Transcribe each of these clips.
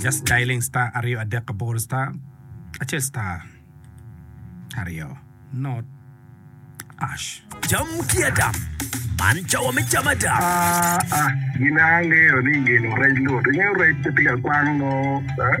Just dialing star aryo adek aboro star acel star aryo not ash. Cam ki ada. Man cawa me cam ada. Ah, ah, gin angeyo ni gino rec lut. Ingeyo rec pe tika kwang no, eh?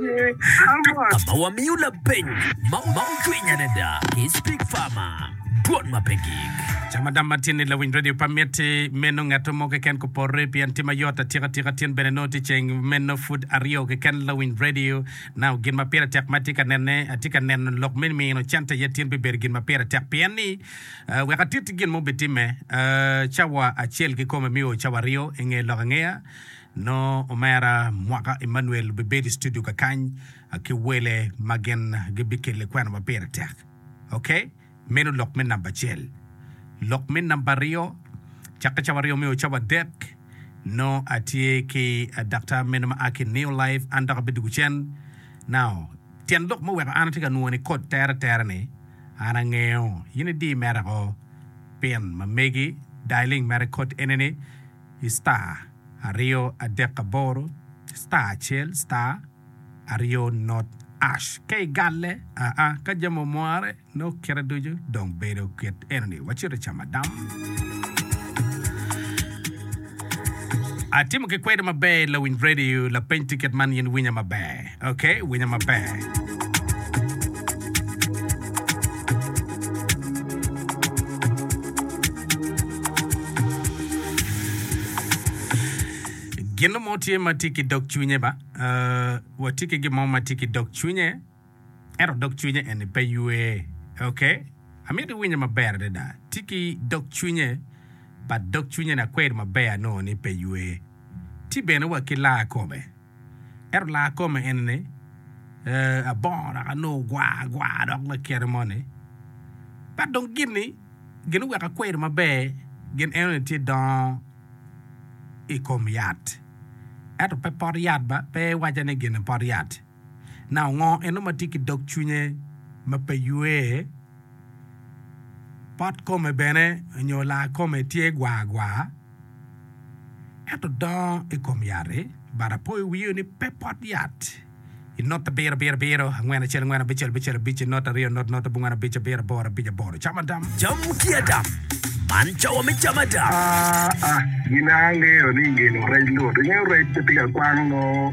ma wamiyo lapeny ma ocwiny adada ki Speak Farmer, Dwol ma pe gik. Ca madam ma tye ni lawiny radio pe amiti meno ngatto mo keken ko porre pien tye mayot atika atika tin bene nongo tye ceng meno pud aryo keken lawiny radio now gin ma pire tek ma atye ka nene atye ka neno lok me mino cente aye tin bibedo gin ma pire tek pien ni wek atiti gin ma obitimme cawa acel kikome miyo cawa aryo inge lok angeya Nongo omera mwaka Emmanuel obibedo i studio kakany ki wele ma gin gibikelle kwena ma pire tek. Ok, meno lok me namba acel. Lok me namba aryo, cakke cawa aryo me ocawa adek, nongo atye ki daktar meno ma a ki i New Life, an dok abedo gucen. Now, tyen lok muweko an atye ka nwoyo ni kod tere tere-ni, an angeyo in idi merako pin ma megi, dialing mere kod enini, i star aryo adek aboro star acel star aryo not ash ka i galle aa ka jami omwore nongo kite ducu dong bedo kit eno ni wacito i camadam atimo ki kwedo maber lawiny radio lapeny ticket man in winya maber. Ok, winyo maber. Gino mo tye ma tye ki dog cwinye ba? Uh, watye ki gin mo ma tye ki dog cwinye, ento dog cwinye eni pe ywe. Ok, amito iwinye maber adada. Tye ki dog cwinye, but dog cwinye-ni akweri maber anongo ni pe ywe. Tye bene wa ki laa kome. Ento laa kome eni ni, Ee, abongo dok anongo gwa gwa dok lakite mo ni. But dong gin ni gin oweko akwedo maber gin eno ni tye dongo i kom yat ento pe pot yat ba pe iwaca ni gin ni pot yat. Now ngo eno ma tye ki dog cwinye ma pe ywee? Pot kome bene nyo laa kome tye gwa gwa? Ento dongo i kom yat-ti, bat apo i wiyo ni pe pot yat. I not abiro abiro abiro, angwen acel angwen, abic acel abic acel, abic i not aryo, not not abongwen, abic abiro aboro, abic aboro. Cam adam. Cam ki adam. Man cawa me cam adam. Aa, gin a angeyo ni ngino rec lut. Ingeyo rec pe tye ka kwang nongo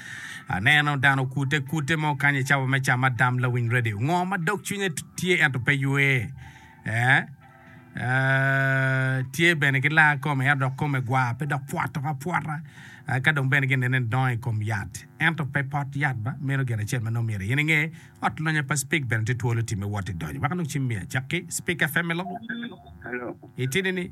Aneno dano okute kute mo kany i cawa me cam adam lawiny radio ngo ma dog cwinye tye ento pe ywe tye bene ki laa kome ento dok kome gwar pe dok pwot tok apwota ka dong bene ginene ni dongo i kom yat ento pe pot yat ba meno gin acel ma nongo myero in inge ot lonya pa spik bene tye twolo time wot idonyo weko nongo cim miyo acakki spik FM i lobo itidi ni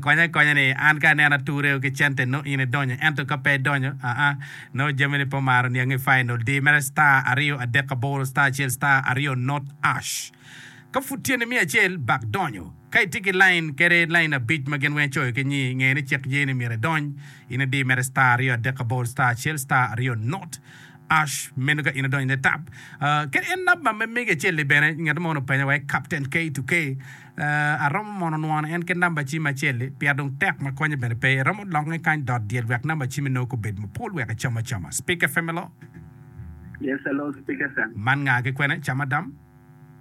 Konya akonya ni an ka aneno ature ki cente nongo in idonyo ento ka pe idonyo aa nongo jami ni pe omaro niangi final di mere star aryo adek aboro star acel star aryo not ash ka pud tye ni miya acel bak donyo ka itye ki line kede line abic ma gin weng icoyo ki nyi nge ni cik ye ni myero idony in idi mere star aryo adek aboro star acel star aryo not ash meno ka in idonyo ne tap kede en number me mege acel ni bene ngat mo onongo openyo wa i captain K to K. Aromo mono nwono en kit namba cim acel-li pia dong tek ma konye bene pe. Iromo lokke kany dot dyel wek namba cimi nongo gubed mapol wek icom acoma. Speaker FM Hello. Yes hello Speaker FM. Man nga ki kwene? Cham Adam?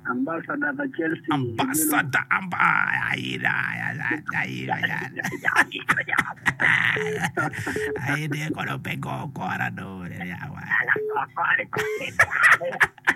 Ambassador pa Chelsea i Gulu. Ambassador amba aye da aye da aye de kono pe go kora do.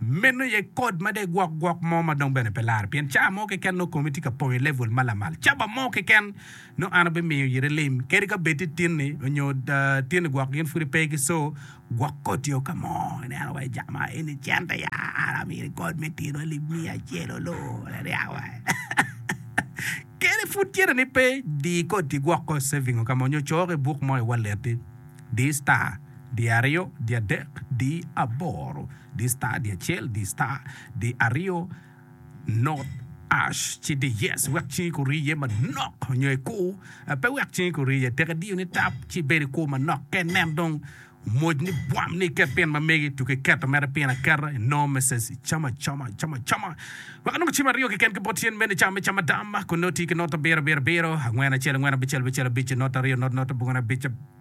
Meno aye kod ma dek gwok gwok mo ma dong bene pe larre, pien cawa mo keken nongo komi tye ka pong i level ma lamal caba mo keken, nongo an abimiyo yiti lim, kadi ka bed tye tinni nyo tinni gwok gin pwod pe gi so gwok koti o ka mo. Ineno wa ica ma eni cente ya an amiri kod me tino alip miya acel olo wek niang wa kene pwod cente ni pe di koti gwok ko saving o ka mo nyo coo ki buk mo i wallet-ti di star. Di aryo, di adek, di aboro, di star, di acel, di star, di aryo, not ash, ci di yes wek cingi ku riye manok nyo i kur pe wek cingi ku riye. Tek idiyo ni tap ci ibed i kur manok kene. Nen dong moc ni bwam ni iket pin ma megi tuku iketo mere pin aketa i no meses icam acama icam acama wek onongo cim aryo keken ki bot cen mene ca me cam adam kun nongo tii ki not abiro abiro abiro angwen acel angwen abicel abicel abic not aryo not not abongone abic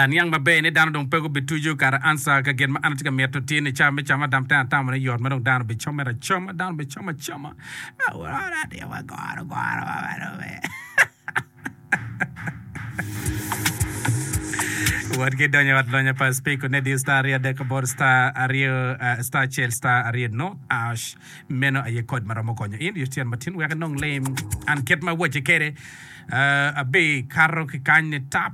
Aniang maber ni dano dong pe gubituco kare answer ka gin ma an atye ka mito tye ni ca me cam adam te atamo ni yot ma dong dano bi comere acoma dano bi com acoma awor adio wa goro goro wa wa dong me wot ki donyo i ot lonya pa speak ne diyo star aryo adek aboro star aryo eh, star acel star aryo not ash Meno aye kod ma romo konyo in Yuctyen matin wek inong lim. An kit ma awacce kwede, abikato ki kany nitap,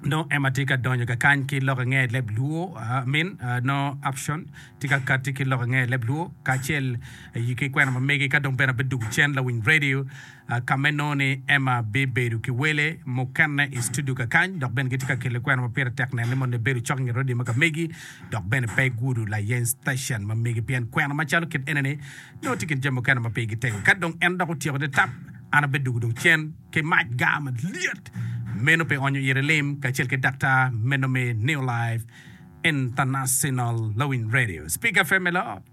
nongo Emma tye ka donyo kakany ki lok ange leb luo, amin, nongo Upshawn tye ka kati ki lok ange leb luo, kacel ki kwena ma megi, ka dong bene abidwogo cen lawiny redio. Ka me nongo-ni, Emma bibedo ki wele mukene i studio kakany dok bene gitye ka kele kwena ma pire tek nene mono ibedo cok nge radio ma ka megi dok bene pe igudo layeny station ma megi pien kwena macalo kit ene-ni nongo tye i kin jami mukene ma pigi tek. Ka dong en dok otyeko te tap, an abeddo dwogo dong cen ki mac gar malyet meno pi onyo ire lim kacel ki daktar meno me New Life International Lawiny Radio, Speak FM me loo.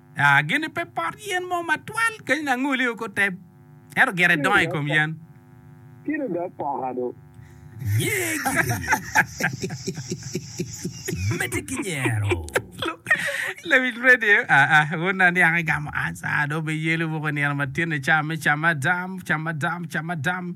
Gini pe pot yen mo matwal kenyo ni angoli-o ki oteb, ento gire dongo i kom yen. Kite dok poka do. Yeg mete ki nyero. Lawic radio, aa, wun na niang igamo ansa, do be yelo woko nino matino, cam me cam madam, cam madam, cam madam.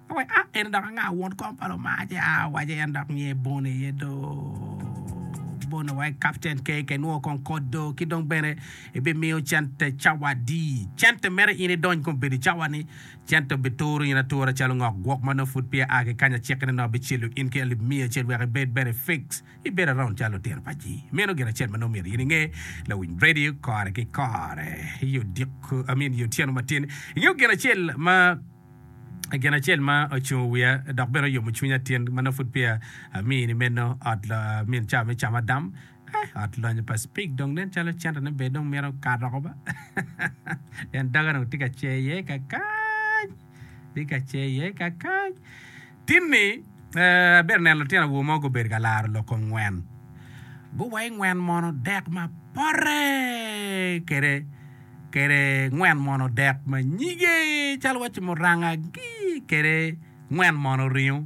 Awac, A! En dok anga won kom pa Loma? Ce a awace, En dok nge bono iye do bono wa i kapten keke, inwongo kong kot do, ki dong bene ibimiyo cente cawa adi? Cente mere in idony kong bedo i cawa ni? Cente obituro in atura calo ngok gwok ma nongo pud peya a ki kany aciki ni nongo abicelo in ki alip miya acel wek ibed bene fix ibedo around calo lutino pa ji. Meno gin acel ma nongo myero in inge, lawiny radio kore ki kore, i odiko, I mean, i otyeno matin. Ingeyo gin acel ma. I gin acel ma ocungo wiya dok bene oyomo cwinya tin ma nongo pud peya amiyi ni meno, ot min cawa me cam adam. Eh, ot lonyo pa Speke dong nen calo centone bene dong mito kato oko ba. En doge dong tye ka cer iye ka kany, tye ka cer iye ka kany. Tin-ni, abyero neno lutino awobe mogo gubedo ka laro lok ongwen. Guwayi ngwen mono dek ma pote kede, kede ngwen mono dek ma nyige, calo wacci muranga gi kede ngwen mono ringo.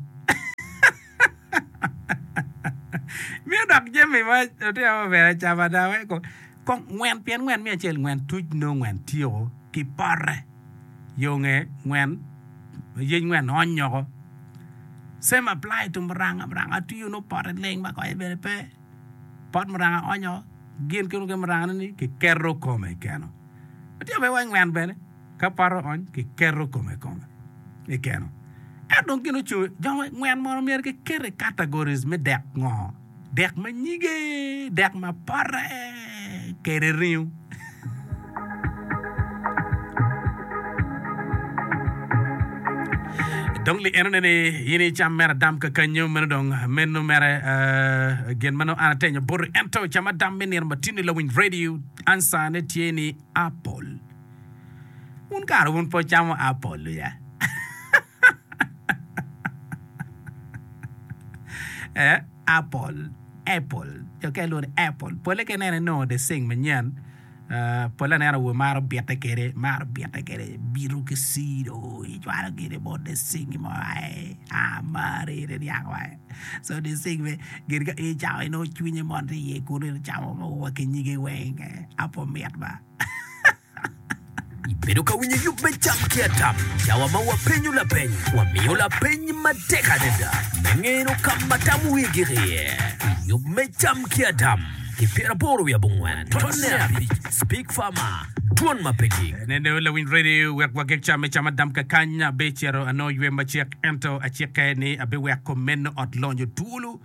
Miyo dok jami ma lutino awobe ber acama, dok weko kong ngwen pien ngwen miyo acel ngwen tuc nongo ngwen tyeko ki pote. yo nge ngwen ma yec ngwen onyo ko same apply to muranga muranga twiyo nongo pote leng ma konye bene pe pot muranga onyo gin ki nongo muranga ne ni kiketo kome keno atye mere wa ngwen bene ka pote ony kiketo kome kome ikeno ento dong gin ocung jo ngwen mono myero kikete categories me dek ngo. Dek ma nyige, dek ma pote kede ringo. Dong li enone ni in icam mere adam kakanyo, meno dong meno mere uh, gin meno an atenyo boti. Ento cam adam me nino matino i lawiny radio, ansa ne tye ni apple. Wun kara wun pe wucamo apple ya? Apple pole ka ineno inongo deceng manyen pole anena wa maro bite kwede bito ki cido icwalo gire bot deceng mo aye amari ni niang wa aye so deceng bene gin ka in icamo aye nongo cwinyi mol tye iye kunu icamo wa ki nyige weng apple mit ba. Ibedo ka winyo yub me cam ki atam? Cawa ma wapenyo lapeny, wamiyo lapeny matek adada me ngeno ka ma tam wigi iye. I yub me cam ki atam, ki pyeraboro wiye abongwen, tonne abic, Speak Farmer, Dwon ma pe gik. Neno lawiny redio wek wageg cam me cam adam kakany. Abecito anongo ywe macek, ento acikke ni abewek kom meno ot lonyo twolo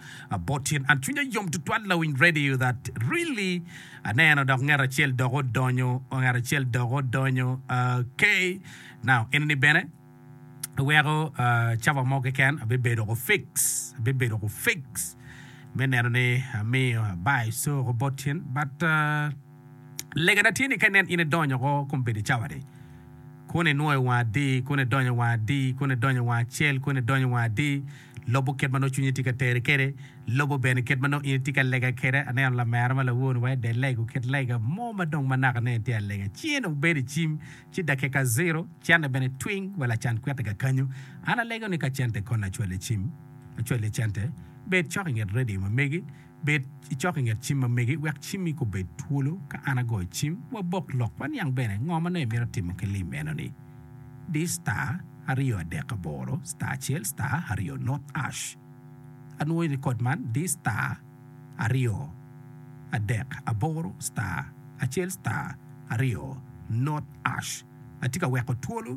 bot tyen. An cwinya yom tutwal lawiny redio that really. Aneno dok ngat acel dok odonyo, ngat acel dok odonyo, okay. Now, enini bene weko caba mo keken abibedo ko fix, abibedo ko fix me neno ni amiyo abayo coo bot in, but legana tye ni ka inen in idonyo ko kum bedo cawa ni, kun inwoyo wanga adi, kun idonyo wanga adi, kun idonyo wanga acel, kun idonyo wanga adi. Lobo kit ma nongo cwinyi tye ka teri kwede, lobo bene kit ma nongo in itye ka lega kwede. Aneno lamera ma lawonu wa i dye lego kit lega mo ma dong ma naka nene tye alega. Cinge dong bedo i cim, ci dakika ziro, cente bene twing wa lacan kwitte kakanyo. An alego ni ka cente konna cwale i cim, acwali cente. Bed cok i nget redio ma megi. Bed icok i nget cim ma megi wek cimmi gubed twolo. Ka an agoyo cim, wabok lok waniang bene ngo ma nongo imito timo ki lim enoni. Di star aryo adek aboro star acel star aryo North Ash. Anwoyo ni kod man di star aryo adek aboro star acel star aryo North Ash. Atye ka weko twolo.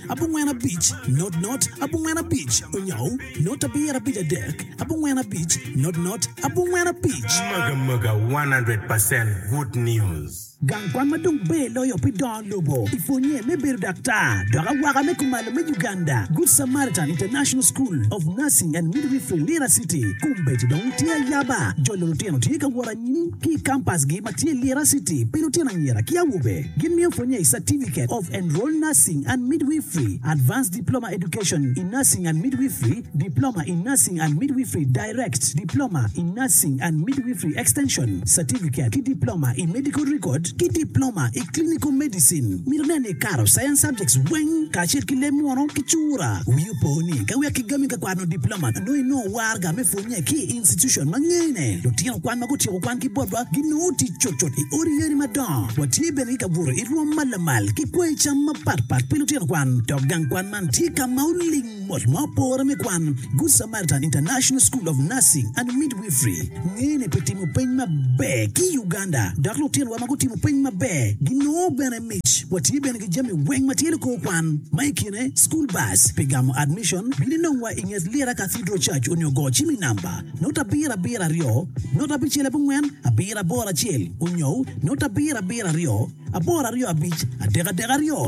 abongwen abic, not not, abongwen abic, onyaw, not abiro abic adek, abongwen abic, not not, abongwen abic. Mega mega 100 percent good news. Gang kwan ma dong ber loyo pi dongo lobo i pwonye me bedo daktar dok awaka me kumalo me Uganda, Good Samaritan International School of Nursing and Midwifery, Lira City, kombeddi dong tye ayaba. Jolo lutino tye ka wot anyim. ki i kampasgi ma tye i Lira City pi lutino anyira ki awobe. Gimiyo pwonnye i Certificate of Enrolled Nursing and Midwifery, Advanced Diploma Education in Nursing and Midwifery, Diploma in Nursing and Midwifery Direct, Diploma in Nursing and Midwifery Extension, Certificate ki Diploma i Medical Record, ki Diploma i Clinical Medicine. Mito nen ni ikato Science Subjects weng kacel ki leb munu ki cura. Wi opo ni ka wek kigami ka kwano Diploma nongo inongo waraga me pwonnye. Ki i institucon ma ngene, lutino kwan ma gutyeko kwangi botwa ginongo tic cutcut i odi yeni madongo. Watye bene ki ka buto i rwom ma lamal ki kwayo cam mapatpat pi lutino kwan. Dok gang kwan man tye ka ma oling mot ma opore me kwan. Good Samaritan International School of Nursing and Midwifery ngene pi timo peny maber ki i Uganda, dok lutinowa ma gutimo peny maber ginongo bene mic. Watye bene ki jami weng ma tye likor kwan, ma i kine School Bus pi gamo admission, bino inong wa i nget Lira Cathedral Church onyo go cim i namba note abiro abiro aryo note abicel abongwen abiro aboro acel onyo note abiro abiro aryo aboro aryo abic adek adek aryo.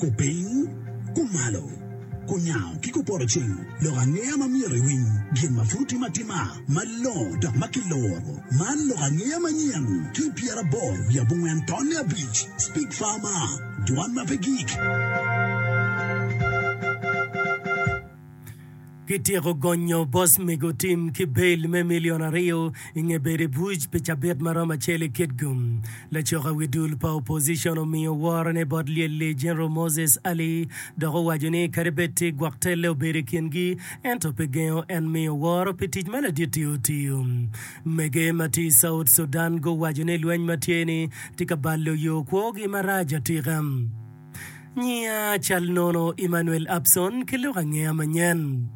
Kupiny, kumalo, kunyango ki kupoto cing lok angeya ma myero iwiny, gin ma pud otim atima malongo dok ma kiloro. Man lok angeya manyen ki pyeraboro wiye abongwen tonne abic, Speak Farmer, Dwan ma pe gik. Kityeko gonyo bos mego tim ki bail me milion aryo i nge bedo i buc pi cabit ma romo acel i Kitgum. Lacoka wi dul pa opposition omiyo worone bot lyel-li General Moses Ali dok owaco ni kadi bed tye gwok telle obedo i kingi ento pe gengo en miyo woro pi tic ma ladit-ti otiyo. Mege ma tye i South Sudan guwaco ni lweny ma tye-ni tye ka balo yo kwogi marac atika. Nyinga cal nono Emmanuel Abson ki lok angeya manyen.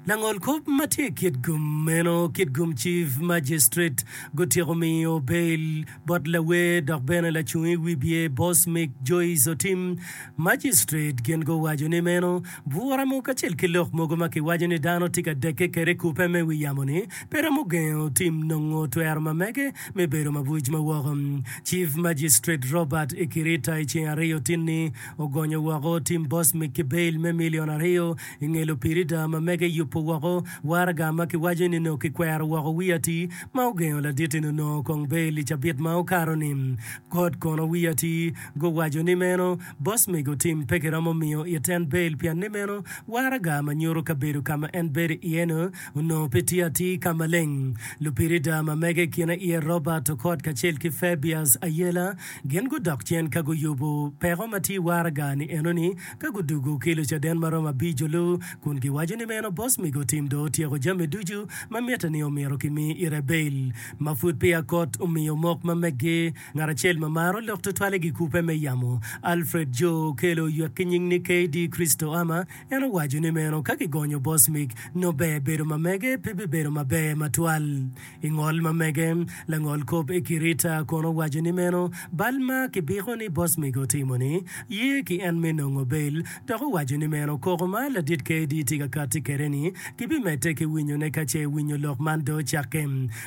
Langol kop ma tye i kit gum meno kit gum Chief Magistrate gutyeko miyo bail bot lawer dok bene lacung i wibye Boss Mick Joyce Otim, Magistrate gin guwaco ni meno bwuramu kacel ki lok mogo ma kiwaco ni dano tye ka dekke kede i kupe me wi yamo ni pe romo gengo Otim nongo twero ma mege me bedo mabuc ma woko. Chief Magistrate Robert Ikirita i ceng aryo tinni ogonyo woko Tim Bosmic ki bail me milion aryo i nge lupirida ma mege yubo woko waraga ma kiwaco ni nongo kikwero woko Wiati ma ogengo laditi-ni onongo kong bail i cabit ma okato ni. Kot kono Wiati guwaco ni meno Bosmic otim pe kiromo miyo it en bail pianne meno waraga ma nyuto kabedo ka ma en bedo iye-nu Onongo pe tye atir ka maleng. Lupirida ma mege i kine iye Robert Okot kacel ki Fabius Ayela gin gudok cen ka guyubo peko ma tye i waraga-ni enoni ka gudwogo ki Lucaden ma romo abico-lu kun giwaco ni meno bos migo tim dong otyeko jami ducu ma mitte ni omyero kimi Irabel ma pud peya kot omiyo mok ma meggi Ngat acel ma maro lok tutwal i gikubbe me yamo, Alfred Jo, okelo ywek ki nying ni KD. Christoama. En owaco ni meno ka kigonyo bos mig nongo ber bedo ma mege pe bibedo maber matwal. I ngol ma mege, langol kop i kirita kono owaco ni meno bal ma kibiko ni bos mig otimo-ni ye ki en me nongo bel dok owaco ni meno koko ma ladit KD. tye ka kati kwede-ni gibimedde ki winyone ka ce winyo lok man dong ocakke.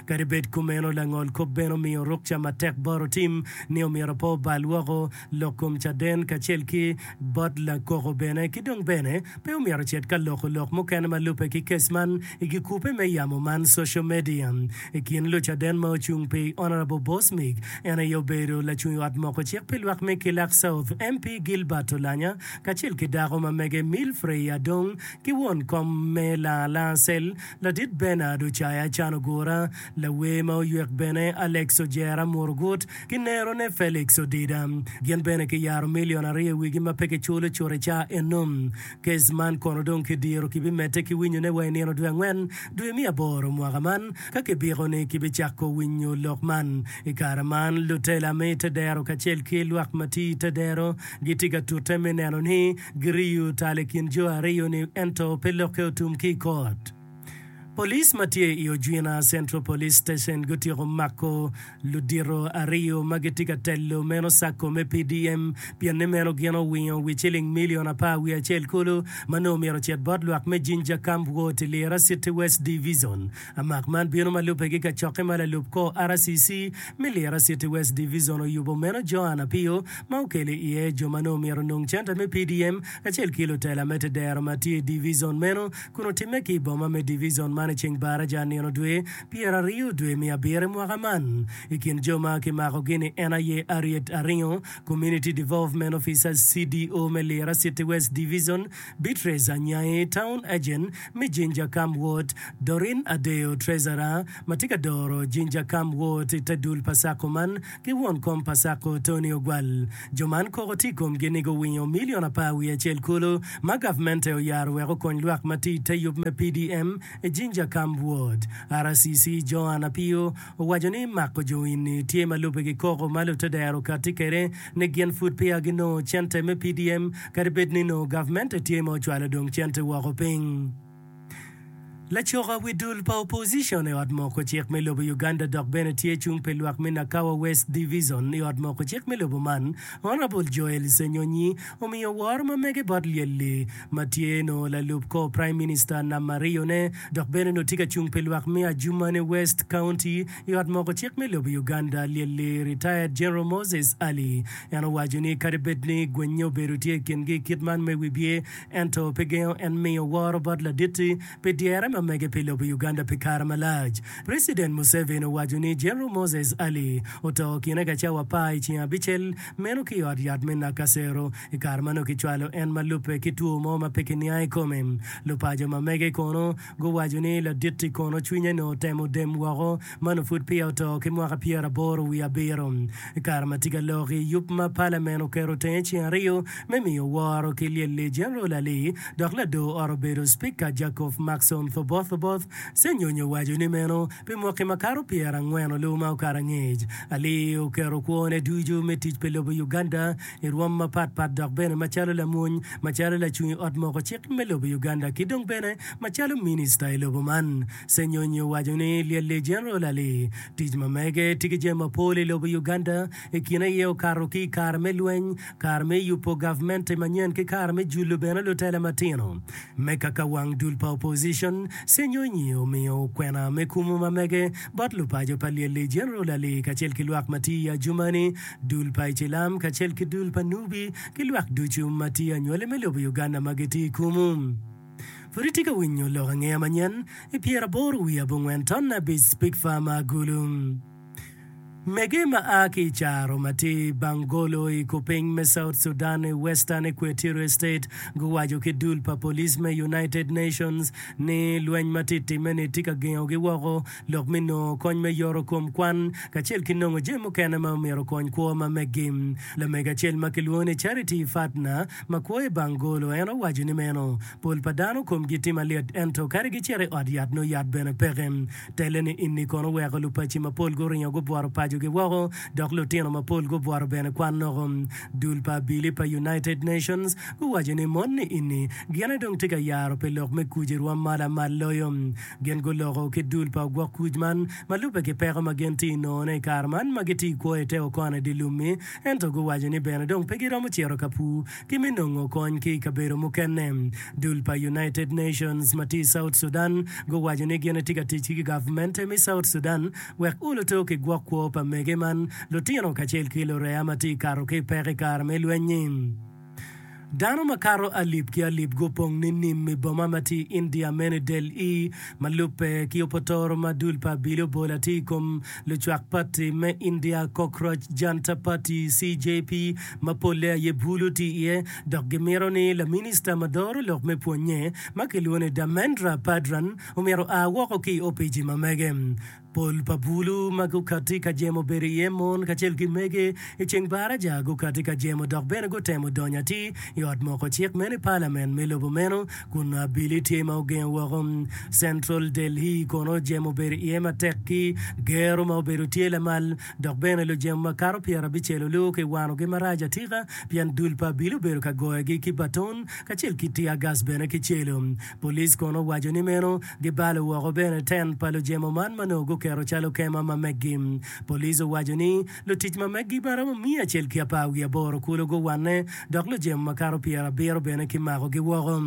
Kadi bed kumeno, langol kop bene omiyo rukca matek bot otim ni omyero pe obal woko lok kom caden kacel ki bot lakoko bene, ki dong bene pe omyero ocit ka loko lok mukene ma lubbe ki kes man i gikube me yamo man social media. I kin lucaden ma ocung pi Honourable Bosmig, en aye obedo lacung ot moko cik pi lwak me Kilak South MP Gilbert Olanya kacel ki dako ma mege Milfrey Adong ki won kom me Laa Laa Cell Ladit Bernard ocayo acano gura. Lawer ma oywek bene, Alex Ojera Murugut ki nerone Felix Odida, gin bene kiyaro milion aryo i wigi ma pe kiculo cut i cawa eno. Kes man kono dong kidiro kibimedde ki winyone wa i nino dwe angwen dwe me aboro mwaka man ka kibiko ni kibicako winyo lok man. I kare man, lutela me i te dero kacel ki lwak ma tye i te dero gitye ka tute me neno ni Giriyo tal i kin jo aryo-ni ento pe lokke otum ki i kot. Police ma tye i Ojwina Central Police Station gutyeko mako ludito aryo ma gitye ka telo meno sacco me PDM pien ni meno gin owingo wi ciling milion apar wiye acel kulu ma nongo myero ocit bot lwak me Jinja Camp Ward i Lira City West Divizon Amak man bino ma lubbe gi kacokke ma lalub kor RCC me Lira City West Divizon oyubo meno Joan Apio ma okelo i iye jo ma nongo omyero onong centa me PDM kacel ki lutela me tedero ma tye i divizon meno kun otimme ki i boma me divizon man i ceng Baraja nino dwe pyera aryo dwe me abiri mwaka man. I kin jo ma kimakogi ni en aye Harriet Aringo, Community Devolvement Officer, CDO, me Lira City West Divizon, Beatrice Anyai, Town Agent me Jinja Kam Ward, Doreen Adeyo, Treasurer ma tye ka doro Jinja Kam Ward i te dul pa Sacco man, ki won kom pa Sacco Tony Ogwal. Jo man koko tye i komgi ni guwinyo milion apar wiye acel kulu ma gavmente oyaro wek okony lwak ma tye i te yub me PDM i Jinja Kam Ward. RCC Joan Apio, Owaco ni mako jo eni tye ma lubbe ki koko ma Luteder okatti kwede ni gin pud peya ginongo cente me PDM kadi bed ni nongo gavmente tye ma ocwalo dong cente woko piny. Lacoka wi dul pa opozicon i ot moko cik me lobo Uganda dok bene tye cung pi lwak me Nakawa West Divizon i ot moko cik me lobo man, Honourable Joel Ssenyonyi omiyo woro ma mege bot lyel-li ma tye nongo lalub kor Praim Minista nam mariyone dok bene onongo tye ka cung pi lwak me Adjumani West County i Ot Moko Cik me lobo Uganda, Lyelli, Retired General Moses Ali. En owaco ni kadi bed ni gwenye obedo tye i kingi i kit man me wibye, ento pe gengo en miyo woro bot Laditti pi dyere ma mege pi lobo Uganda pi kare malac. President Museveni owaco ni General Moses Ali oto kine ka cawa apar i ceng abicel meno ki i ot yat me Nakasero. I kare ma nongo kicwalo en ma lubbe ki two mo ma pe kiniang i kome, lupaco ma mege kono guwaco ni ladit-ti kono cwinye nongo otemo dem woko ma nongo pud peya oto ki mwaka pyeraboro wiye abiro. I kare ma tye ka lok i yub ma palamen oketo tenge ceng aryo me miyo woro ki lyel-li, Jeneral Ali dok ladoo ot obedo Cpika Jacob Maxon Thoboth Oboth Senyonyo owaco ni meno pi mwaki makato pyerangwen-nlu ma okato angec, Ali oketo kwone ducu me tic pi lobo Uganda i rwom mapat pat dok bene macalo lamwony, macalo lacung i ot moko cik me lobo Uganda ki dong bene macalo minista i lobo man. Senyonyi owaco ni lyel li General Ali, tic ma mege tye ki jami mapol i lobo Uganda, i kine aye okato ki i kare me lweny, kare me yubo gavmenti manyen ki kare me julo bene lutela matino. Me kaka wang dul pa opposition, Senyonyi omiyo okwena me kumu ma mege bot lupaco pa lyel li General Ali kacel ki lwak ma tye i Adjumani dul pa Icilam kacel ki dul pa Nubi ki lwak ducu ma tye anywali me lobo Uganda ma gitye i kumu. Pud itye ka winyo lok angeya manyen i pyeraboro wiye abongwen ton abic Spikfa ma Agulu. Mege ma a ki i Caro ma tye i Bangolo i kupiny me South Sudan i Western Equatorial State guwaco ki dul pa police me United Nations ni lweny ma tye timme ni tye ka gengogi woko lok me nongo kony me yoro kom kwan, kacel ki nongo jami mukene ma omyero okony kwo ma meggi. Lamego acel ma kilwongo ni Charity Pfadner, ma kwo i Bangolo, en owaco ni meno, Pol pa dano komgi tye malit ento kadi gicito i ot yat nongo yat bene peke. Telle ni enni kono oweko lupaci mapol guringo gubworo pacogi woko dok lutino mapol gubworo bene kwannoko. Dul pa Abili pa United Nations guwaco ni monni enni gine dong tye ka yaro pi lok me kuc i rwom ma lamal loyo. Gin guloko ki dul pa ogwok kuc man ma lubbe ki peko ma gin tye nongone i kare man ma gitye kwo i te okona i dye lum-mi, ento guwaco ni bene dong pe giromo cito ka pur ki me nongo kony ki i kabedo mukene. Dul pa United Nations ma tye i South Sudan guwaco ni gin etye ka tic ki gavmente me South Sudan wek uluto ki gwok kwo pa mege man lutino kacel ki lureya ma tye ka kato ki i peko i kare me lweny-nyi. Dano makato alip ki alip gupong ninim i boma ma tye i India mene Delhi, ma lubbe ki opotoro ma dul pa abili obolo atir i kom lucwak pati me India Cockroach Janta Party, CJP, ma polle aye bulu tye iye dok gimito ni laminista ma doro lok me pwonnye ma kilwongo ni Dharmendra Pradhan omyero oa woko ki i opici ma mege. Pol pa bulu ma gukatti ka jemo obedo iye mon kacel ki mege i ceng baraja gukatti ka jemo dok bene gutemo donyo atir i ot moko cik meno i palament me lobo meno kun nongo abili tye ma ogengo woko. Central Delhi kono jemo obedo iye matek ki gero ma obedo tye lamal dok bene lujemo ma kato pyerabicel olor ki wanogi marac atika pien dul pa abili obedo ka goyogi ki baton kacel ki tiagas bene ki celo. Police kono owaco ni meno Gibalo woko bene ten pa lujemo man ma nongo guketo calo kema ma meggi. Police owaco ni lutic ma meggi ma romo miya acel ki apar wiye aboro kulu guwanne dok lujemo ma kato pyer abiro bene ki makogi woko.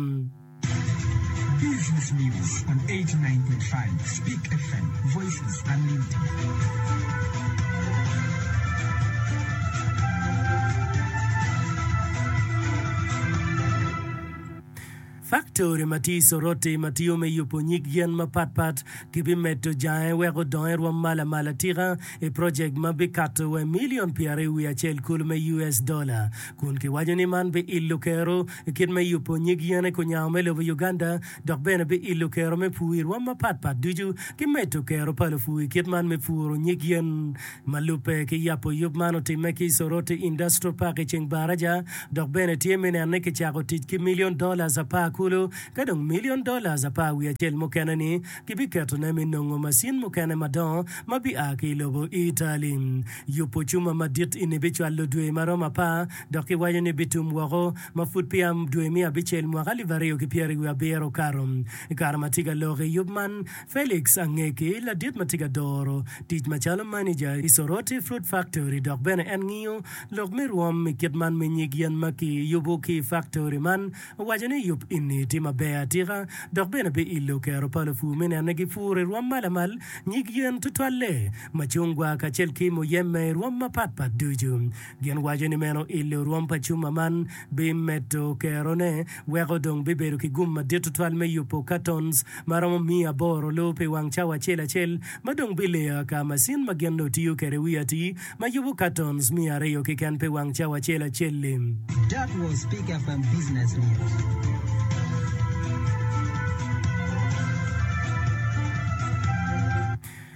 Faktori ma tye i Soroti ma tiyo me yubo nyig yen mapatpat gibimedo jange wek odong erom malo malo atika i projek ma bikato wa i milion pyeraryo wiye acel kulu me US dola, kun kiwaco ni man biilo kero i kit me yubo nyig yene ku nyango me lobo Uganda dok bene biilo kero me pur i rom mapatpat ducu ki medo kero pa lupur i kit man me puro nyig yen. Ma lubbe ki yabo yub man otimme ki Soroti Industrial Park i ceng Baraja dok bene tye me neno ni kicako tic ki million dollars apar kulu ka dong million dollars apar wiye acel mukene ni gibiketone me nongo macin mukene madongo ma bia ki i lobo Italy. Yubo cuma madit ini bicwalo dwe ma romo apar dok kiwaco ni bitum woko ma pud peya dwe me abicel mwaka alip aryo ki pyeraryo wiye abiro okato. I kare ma tye ka lok i yub man, Felix Angeki, ladit ma tye ka doro tic macalo maneja i Soroti Fruit Factory dok bene en ngiyo lok me rwom i kit man me nyig yen ma kiyubo ki i faktori man, owaco ni yub enni tye maber atika dok bene pe illo kero pa lupur me neno ni gipuro i rwom ma lamal nyig yen tutwalle, macungwa kacel ki muyembe i rwom mapatpat ducu. Gin waco ni meno ilo rwom pa cuma man bimedo kerone weko dong bibedo ki gum madit tutwal me yubo katons ma romo miya aboro luu pi wang cawa acel acel ma dong bileya ka macin ma gin nongo tiyo kwede wiye atir ma yubo katons miya aryo keken pi wang cawa acel acel-li. That was Pick FM Business News.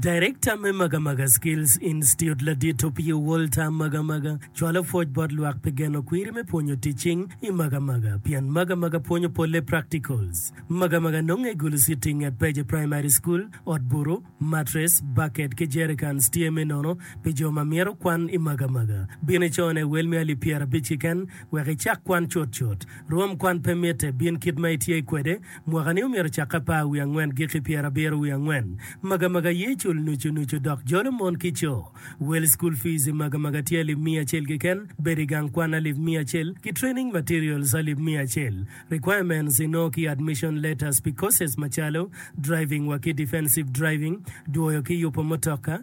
Darekta me Magamaga Skills Institute ladit Opio Walter Magamaga cwalo pwoc bot lwak pi geno kwiri me pwonyo tic cing i Magamaga pien Magamaga pwonyo polle practicals. Magamaga nonge i Gulu City nget Peje Primary School. Ot butu, mattress, bucket ki jerrycans tye me nono pi jo ma myero kwan i Magamaga. Bin icone wel me alip pyerabic kiken wek icak kwan cutcut. Rwom kwan pe mitte, bin kit ma itye kwede. Mwaka-ni omyero ocak apar wiye angwen giki pyerabiro wiye angwen. Magamaga aye cul nucu nucu dok jolo mon ki co. Wel School Fees i magamaga tye alip miya acel keken, bedo i gang kwan alip miya acel, ki Training Materials alip miya acel. Requirements inongo ki Admission Letters pi courses macalo, Driving wa ki Defensive Driving, Dwoyo ki yupo mutoka,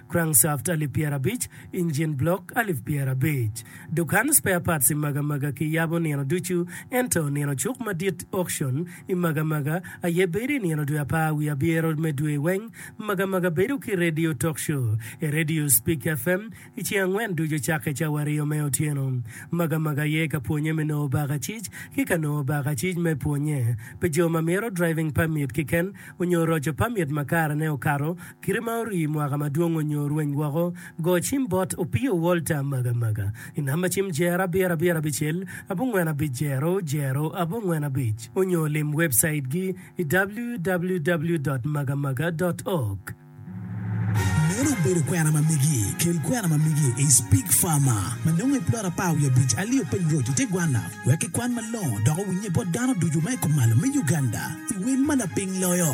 crankshaft alip pyerabic, engine block alip pyerabic. Dukan spare parts i Magamaga ki yabo nino ducu ento nino cuk madit, auction, i Magamaga aye bedo i nino dwe apar wiye abyero me dwe weng. Magamaga bedo ki radio talk show i radio Speak FM i ceng angwen ducu cakke cawa aryo me otyeno. Magamaga aye ka pwonye me nongo bakacic ki ka nongo bakacic me pwonye pi jo ma mito driving permit kiken onyo roco permit ma karene okato Kite ma orii mwaka madwong onyo rweny woko, go cim bot Opio Walter Magamaga i namba cim jer abiro abiro abicel abongwen abic jero jero abongwen abic onyo lim webcait gi i www dot magamaga dot org. Meno obedo kwena ma megi. Kel kwena ma megi i Speak Farmer ma nongo i plot apar wiye abic alio Peng Road i te gwanna wek kikwan malongo dok owinye bot dano ducu ma i kom malo me Uganda i wel ma lapiny loyo.